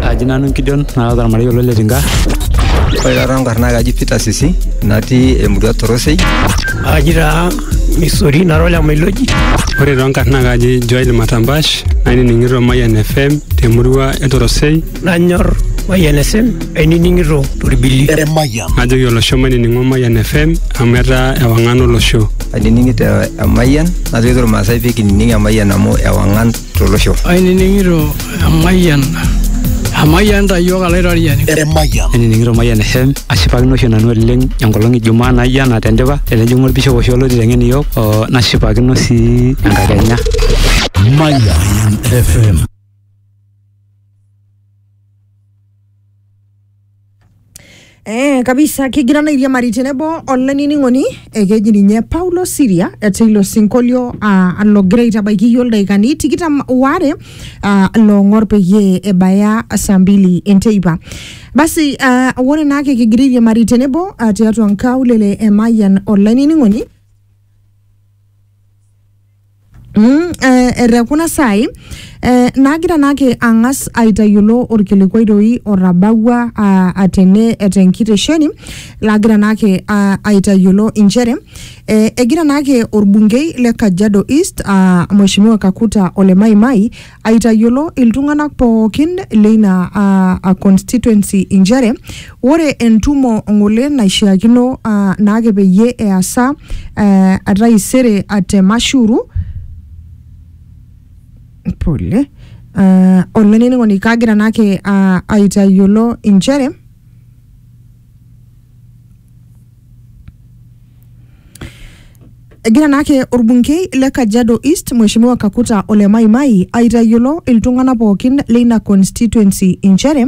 Aji nanu Gideon naa ormarei olo le Tinga. Ore taata enkarna naa kaji Peter Sisi natii emurua Torosei. Aji taa Misori nara ole Mailoji. Ore too nkarn naa kaji Joel Matambash nainining'ito Mayian FM temurua e Torosei. Nanyor Mayian FM ainining'ito Torbili. Najoki olosho mainining'o Mayian FM amu etaa ewang'an olosho. Ainining'ito Emayian najoki Irmaasai pee kinining Emayian amu ewang'an tolosho. Ainining'ito emayian emayian ta iyiook alaitoriani. Emayian. Ainining'ito Mayian FM ashipakino oshi nanu oleng enkolong ijumaa naijo ena tendipa tenejing'u olbishop oshi olotii teng'en iyiook oo nashipakino sii enkakenya. Mayian FM. Eh, kabisa kigira naa airiamari tenebo olainining'oni ekeji ninye Paulo Siria teilo sinkolio ah, logira aitabaiki iyiok ildaikani tikitam waare ah, loong'or peyie ebaya saa mbili enteipa. Basi ah, ore naake kigira airiamari tenebo ah, tiatua nkaulele e Mayian olainining'oni Mm, eh, te kuna saai eh, naagira naake ang'as aitayiolo orkilikuai doi otabawua ah, atene tenkitesheni laagira naake ah, aitayiolo inchere eh, egira naake orbungei le Kajiado East ah, Mheshimiwa Kakuta Ole Maimai aitayiolo iltung'anak pookin leina aa a constituency inchere ore entumo ng'ole naishiakino aa naake peyie easa aa ataisere a te Mashuru pole aa olainining'oni kagira naake aa aitayiolo inchere Egira naake orbungei le Kajiado East Mheshimiwa Kakuta Ole Maimai aitayiolo iltung'ana pookin leina constituency inchere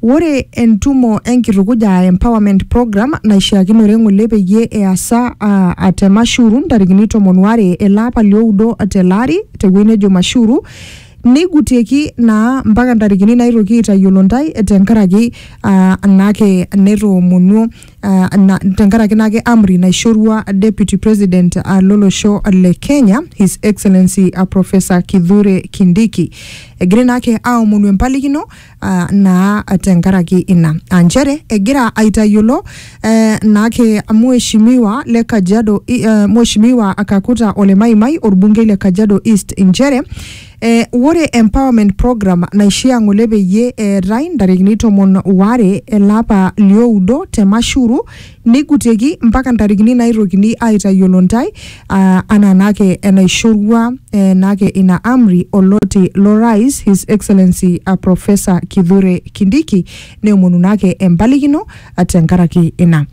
ore entumo enkitukuja aa empowerment program naishiakinore ng'ole peyie easa aa a te Mashuru ntarikini tomon waare ele apa lioudo tele ari tewueji nejo Mashuru Neigutieki naa mpaka ntarikini naitoki aitayiolo ntae tenkaraki ah, naake netoomonuo ah, na, tenkaraki naake amri naishorua Deputy President ah, lolosho le Kenya His Excellency ah, Professor Kithure Kindiki. Egirai naake aomonu empalikino ah, naa tenkaraki ina aa nchere egira aitayiolo eh, naake mheshimiwa le Kajiado I- eh, mheshimiwa Kakuta Ole Maimai orbungei le Kajiado East nchere eh, ore empowerment program naishia ng'ole peyie eetai ntarikini tomon waare elapa lioudo te Mashuru neigutieki mpaka ntarikini naaitokini aaitayiolo ntae, aa anaa naake enaishorua eh, naake ina amri oloti lo Rais His Excellency ah, Professor Kithure Kindiki neomonu naake empalikino ah, tenkaraki ina.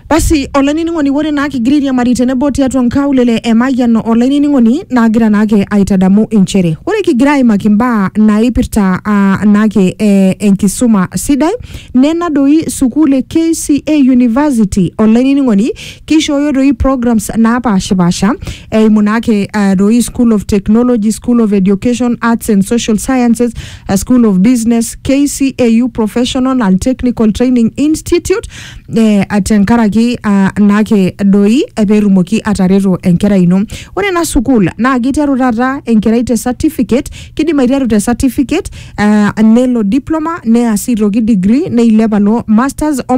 Basi olainining'oni ore naa kigira airiamari tenebo tiatua nkaulele e Mayian olainining'oni naagira naake aitadamu inchere ore kigira aimaki imbaa naipirta ah, naake eh, enkisuma sidai Nena doi sukuul e KCA University olainining'oni, keishooyo doi programs naapaashipaasha eimu naake eh, doi School of Technology, School of Education, Arts and Social Sciences, eh, School of Business, KCAU Professional and Technical Training Institute eh, tenkaraki ah, naake doi eh, peetumoki atareto enkerai ino. Ore ena sukuul naa keiteru taata enkerai te certificate, kidim aiteru te certificate uh, nelo diploma neas aitoki degree neilep alo masters o